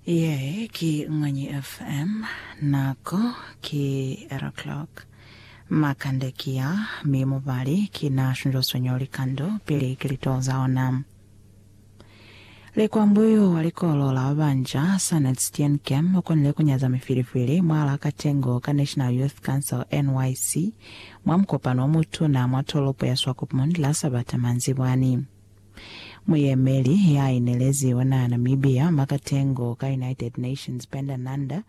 Ye ki Mwanyi FM. Nako ki 8 o'clock. Makande ki ya, mi mubali ki na shunjosonyo likando pili ki lituho za ona. Likwambuyu wa likolo la babanja, Sanet Steenkem, ukonile kunyaza mifilifili mwalaa katengo ka National Youth Council, NYC, mwa mukopano omutuna mwa tolopo ya Swakopmund la Sabata manzibwani. Muyemeli ya inelezi wa naha Namibia mwa katengo ka United Nations Penda Nanda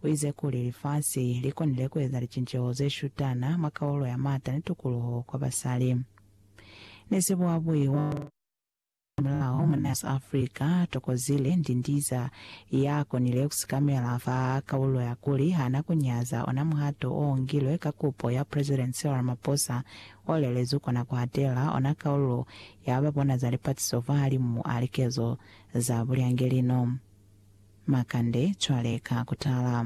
uize kuli lifasi likonile kueza licinceho zeshutana mwa kaulo ya mata ni tukuluho kwa basali ni sibuabui wa mulaho mwa naha ya Africa Thokozile Ndindiza ya konile kusikamela fa kaulo ya kuli hana kunyaza ona muhato oungilwe ka kupo ya President Cyril Ramaphosa O lelezwi kona ku atela ona kaulu ya ba bona za lipatiso fahalimu a likezo za bulyangelino. Makande, cwale ka ku tala.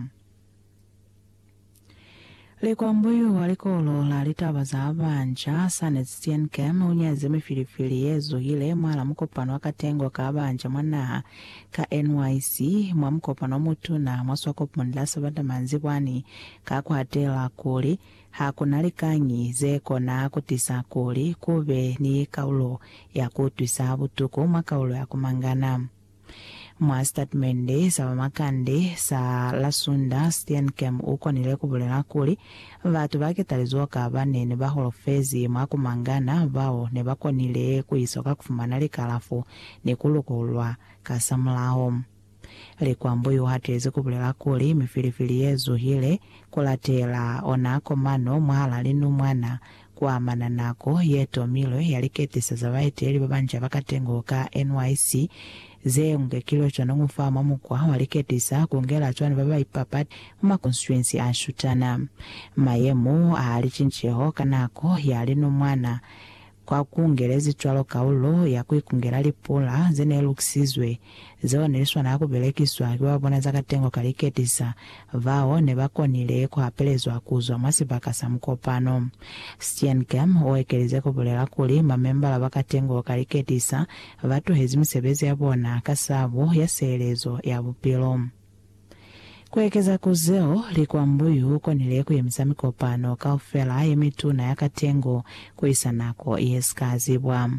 Likwambo yo wa Likolo la Litaba za Baanca, Sanne Steenkamp, u nyazi mifilifili ye zuhile mwa la mukopano wa katengo ka baanca mwa naha ka NYC, mwa mukopano o mutuna mwa Swakopmund la Sabata manzibwani, ka ku atela kuli, Ha ku na likañi ze kona ku tisa kuli ku be ni kaulo ya ku utwisa butuku mwa kaulo ya ku mangana. Mwa sitatimende sa bamakande sa la Sunda, Steenkamp u konile ku bulela kuli, Batu ba ketalizoka ba ne ni ba holofezi mwa ku mangana bao ne ba konile ku iso ka ku fumana likalafo ni ku lukululwa kasamulaho. Likwambo iuhatizi kubulela kuli, Mifilifili yezuhile kulatela ona komano mwahala linumwana kuamana nako yetomilwe ya liketisa za baeteli babanca bakatengo ka NYC. Zeñwi kilo cwanoñu fa mwa mukwa wa liketisa kungela cwani babaipapati mwa makonstituensi ashutana. Mayemo a licinceho ka nako ya linumwana Kwa kungelezi cwalo kaulo ya ku ikungela lipula ze ne lukisizwe, zeo ne li swanela ku belekiswa ki ba bona za katengo ka liketisa, bao ne ba konile ku hapelezwa ku zwa mwa sibaka sa mukopano. Steenkamp u ekelize ku bulela kuli, Mamembala ba katengo ka liketisa ba tuhezi misebezi ya bona ka sabo ya sielezo ya bupilo. Ku ekeza ku zeo, likwambo y'u konile ku yemisa mikopano kaufela ye mituna ya katengo ku isa nako ye si ka zibwa.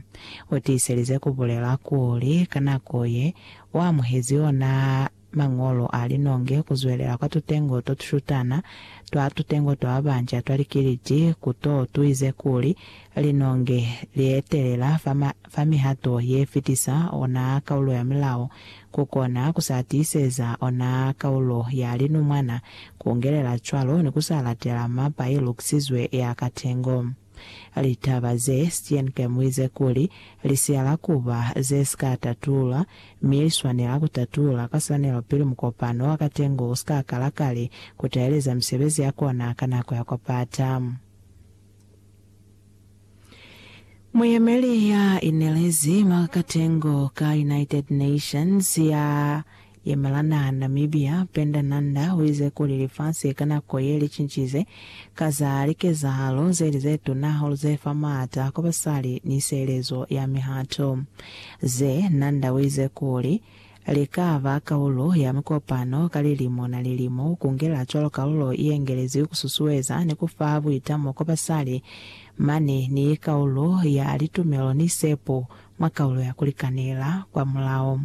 U tiiselize ku bulela kuli, ka nako ye, u amuhezi ona mañolo a linonge ku zwelela kwa tutengo to tushutana twa tutengo twa babanca twa likiliti ku to tu ize kuli, Linonge li etelela fa Fa mihato ye fitisa ona kaulo ya mulao ku kona ku sa tiiseza ona kaulo ya linumwana, ku ngelela cwalo ni ku sa latela mapa ye lukisizwe ya katengo. Litaba ze, Steenkamp uize kuli, li siyala ku ba ze si ka tatulwa, mi li swanela ku tatulwa ka swanelo pili mukopano wa katengo u si ka kala kale ku taeleza misebezi ya kona ka nako ya kwa pata. Muyemeli ya inelezi mwa katengo ka United Nations ya yemelana Namibia, Penda Nanda, uize kuli lifasi ka nako ye licincize ka za likezahalo zeli zetuna hahulu zefa maata kwa basali ni sielezo ya mihato. Ze Nanda uize kuli, Lika ba kaulo ya mikopano ka lilimo na lilimo ku ngela cwalo kaulo ye ngelezwi ku susueza ni ku fa buitamo kwa basali mane ni kaulo ya litumelo ni sepo mwa kaulo ya ku likanela. Kwa mulao,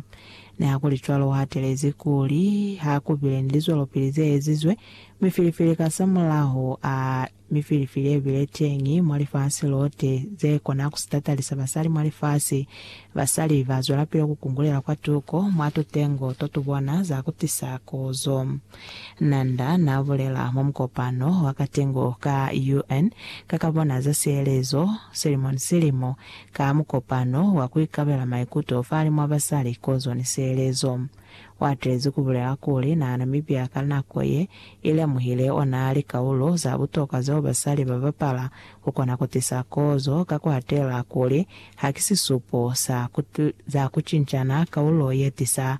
ni hakulicwalo u hatelezi kuli ha ku bile ni lizwelopili ze ezizwe mi filifili kasamulaho a Mi filfi le bile teñi mwa lifasi lote ze kona ku sitatalisa basali mwa lifasi. Basali ba zwelapili ku kungulela kwatuko mwa tutengo to tu bona za ku tisa kozo. Nanda na bulela mwa mukopano wa katengo ka UN ka ka bona za sielezo silimo ni silimo ka mukopano wa ku ikabela maikuto falimwa basali kozo ni sielezo. Uatezi kubulela kuli na Namibia ka nako ye ilemuhile ona likaulo za butokwa zeo basali babapala kukona kutisa kozo ka kuhatela kuli hakisisupo sa za kucincana kaulo yetisa